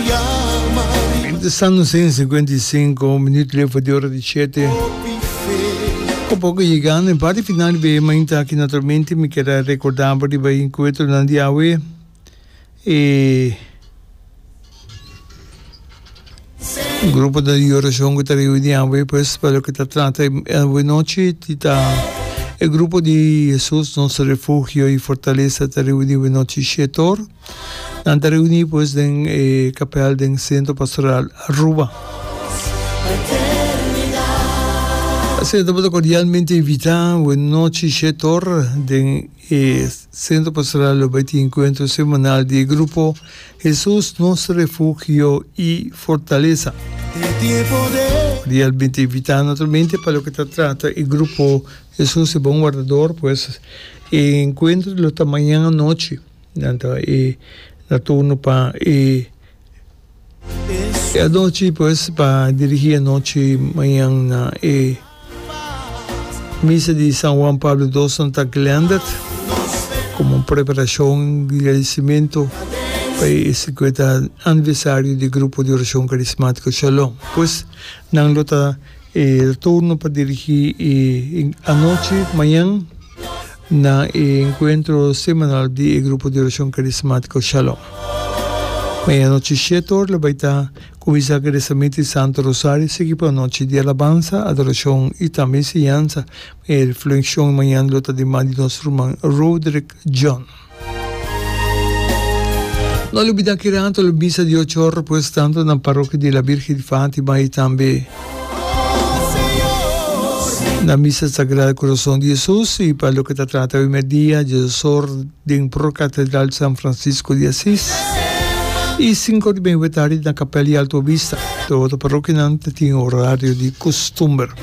Ora ta sa nu sin cincuenta y cinco minuto lefo di ora di shete. Poco poco yegando en parti final di beye mainta aki naturalmente mi keda recorda bo riba e encuentronan di awe e gruponan di oracion cu ta reuni awe pues pa loke ta trata awe nochi tin ta e grupo di Jesus nos refugio y fortaleza ta reuni awe nochi shetor. Nan ta reuni pues den e kapel den Sentro Pastoral Aruba. Asina ta bo ta kordialmente invitá wen nochi she tor den e Sentro Pastoral lo bai tin enkuentro semanal di e grupo Hesus nos refugio i fortalesa. Kordialmente invitá naturalmente pa loke ta trata e grupo Hesus e Bon Wardador pues e enkuentro lo ta mañan anochi. Nan ta e na turno pa e e anochi pues pa dirigi anochi mañan na e misa di San Juan Pablo dos nan ta glended como un preparacion di agradecimento pa e cincuenta aniversario di grupo di oracion carismatico Shalom pues nan lo ta e turno pa dirigi e anochi mañan Na e encuentro semanal di e grupo di oracion carismatico Shalom. Meanochi shete ora lo bai ta cuminsa cu reza misa di Santo Rosario, sigui pa un nochi di alabansa, adoracion y tambe enseñansa. E reflexion mañana lo ta di man di nos ruman Roderick John. No lubida ki rato lo bisa di ocho or pues tanto na Parokia di la Birgen di Fatima y tambe na Misa Sagrado Corazon di Jesus y pa loke ta trata awe merdia Jesus or den Pro Catedral San Francisco di Asis y cinco or di meawe tardi na Capel di Alto Vista. Tur otro parokianan ta tin orario di costumber.